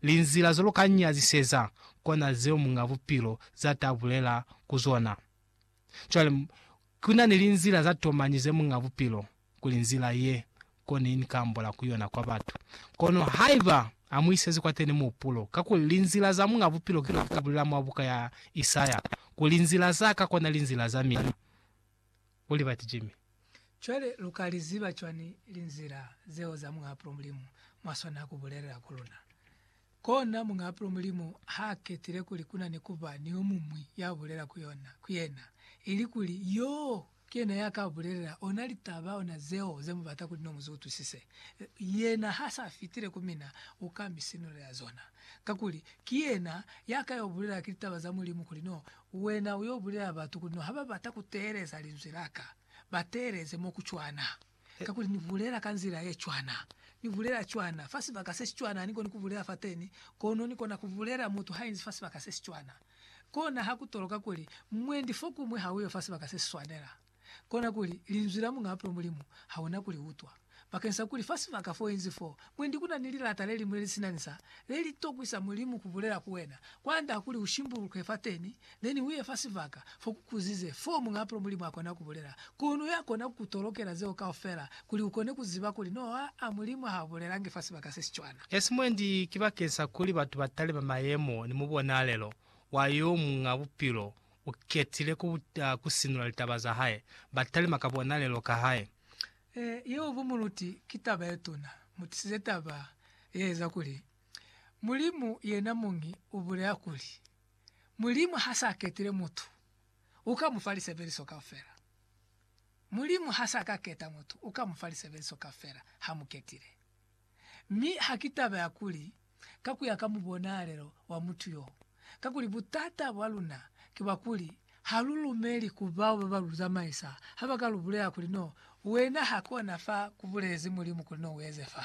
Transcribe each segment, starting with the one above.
Linzila zo lu ka nyaziseza kona zeo Muñ'a Bupilo za ta bulela ku zona. Cwale, ku na ni linzila za tomañi ze Muñ'a Bupilo, kuli nzila ye, koni Ni ka ambola ku yona kwa batu. Kono haiba A mu isezi kwateni muhupulo, kakuli linzila za Muñ'a Bupilo ki luli ka bulela mwa buka ya Isaya, kuli, Linzila za Ka kona linzila za mina. U libati Jimmy. Cwale lu ka li ziba cwani linzila zeo za Muñaa-pula Mulimu mwa swana ku bulelela ku luna? Kona Muñaa-pula Mulimu ha ketile kuli ku na ni ku ba ni yo muñwi ya bulela ku yona, ku yena, ili kuli yoo ki yena ya ka bulelela ona litaba, ona zeo ze mu bata kuli no mu zi utwisise. Yena ha sa fitile ku mina, u ka mi sinulela zona. Kakuli, ki yena ya ka yo bulelela ki litaba za Mulimu kuli no Wena u yo bulela batu kuli no ha ba bata ku teeleza linzwi la ka, ba teeleze mo ku cwana. Kakuli ni bulela ka nzila ye cwana, ni bulela cwana fa sibaka se si cwana ha ni koni ku bulela fateni, kono ni kona ku bulela mutu ha inzi fa sibaka se si cwana. Kona ha ku toloka kuli, mwendi fokuñwi ha u yo fa sibaka se si swanela. kona kuli Linzwi la Muñaa Bupilo Mulimu hauna kuli utwa. Bakeni sa kuli fa sibaka fo inzi foo, mwendi kuna ni lilata leliñwi lelisinanisa, le li tokwisa Mulimu ku bulela ku wena, kwanda kuli ushimbuluke fateni, then uye fa sibaka fo ku kuzize, foo Muñaa Bupilo Mulimu akona ku bulela. Kono ya kona ku ku tolokela zeo kaufela kuli ukone ku ziba kuli no ha a Mulimu ha bulelangi fa sibaka se sicwana. Esi mwendi ki bakeni sa kuli batu ba talima mayemo ni mubonalelo wa yo Muñaa Bupilo U ketile ku sinula litaba za hae. Ba talima ka bonalelo ka hae. E, yeo bo muluti ki taba ye tuna. Mu tisize taba ye eza kuli, Mulimu yena muñi u bulela kuli, Mulimu ha sa ketile mutu, U ka mu fa lisebeliso kaufela. Mulimu ha sa ka keta mutu, U ka mu fa lisebeliso kaufela ha Mu ketile. Mi ha ki taba ya kuli, ka ku ya ka mubonaalelo wa mutu yo, kakuli butata bwa luna ki bwa kuli, ha lu lumeli ku bao ba ba lu zamaisa ha ba ka lu bulela kuli, No, wena ha kona fa ku bulezi Mulimu kuli no u eze fa.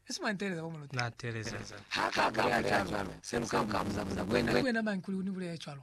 Jesu mwa nteeleza kwa muluti. Na teeleza. Ha ka bulela cwalo, se lu ka mu buza kuli, Wena ki wena mañi kuli u ni bulele cwalo?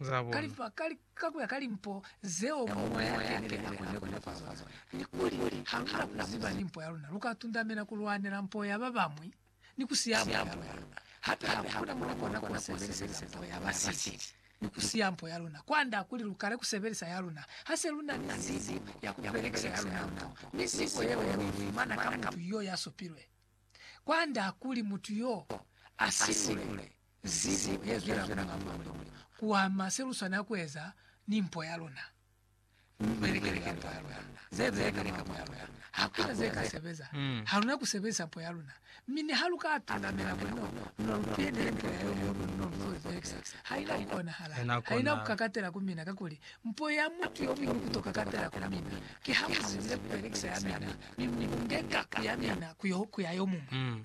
za bona. Ka ku ya ka limpo zeo, muñwi ya kenelela ku nekulifwa zona. Nikuli, haluna ku ziba limpo ya luna, luka tundamela ku lwanela mpo ya babañwi ni ku siya mpo ya luna. Hape hakuna molukona ku sebeliseza mpo ya basili ni ku siya mpo ya luna. Kwand'a kuli lukale ku sebelisa ya luna, ha se luna ni zibo ya ku belekisa ya luna mpo, mi zibo yeo lu i fumana ka mutu yo ya supilwe. Kwand'a kuli mutu yo a silulwe. Zizi ye zwela ku nanga mbundo ku ama se lu swanela ku eza ni mpo ya luna. Mi lu belekele ka mpo ya luna, ze beleka mwa mpo ya luna. Hakuna ze ka sebeza ha lu na ku sebelisa mpo ya luna. Mi niha lu ka atunamela kono luna lu kenele mpo ya yo muñwi mi lu fo belekisa, ha i na ku konahala. Ha i na ku kakatela ku mina, kakuli mpo ya mutu yo muñwi ku to kakatela ku mina. Ki ha mu zibile ku belekisa ya mina, mi mu nge ka ku ya mina ku ya yo muñwi.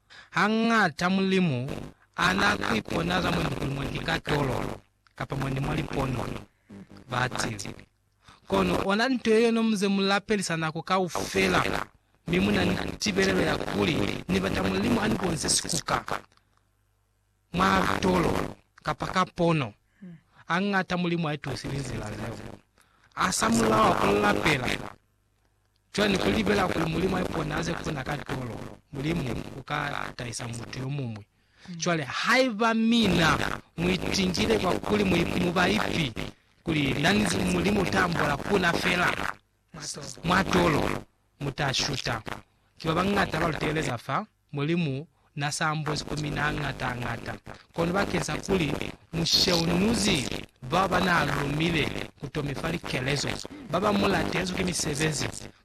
Hañata Mulimu a na ku iponaza mwa litumaki ka tololo kapa mwani mwa lipono, batsibi. Kono ona nto ye yono muze mu lapelisa nako kaufela mi mu na ni tibelelo ya kuli Ni bata Mulimu a ni bonise sikuka mwa tololo kapa ka pono. Hañata Mulimu ha itusi linzila zeo. Hasamulaho ku lapela. Cwani ku libela kuli Mulimu a ipona aze kona ka tolo? Mulimu u ka tahisa mutu yo muñwi. Cwale, haiba mina mu itingile kwa kuli mu, mu ba ifi, kuli, Na ni zibi Mulimu ta mbola ku na fela mwa tolo, mu ta shuta. Ki ba bañata ba lu teeleza fa. Mulimu n'a sa ambozi ku mina hañata-ñata, kono bakensa kuli mu sheunuzi bao ba n'a lumile ku to mi fa likelezo, ba ba mu latezwi ki misebezi,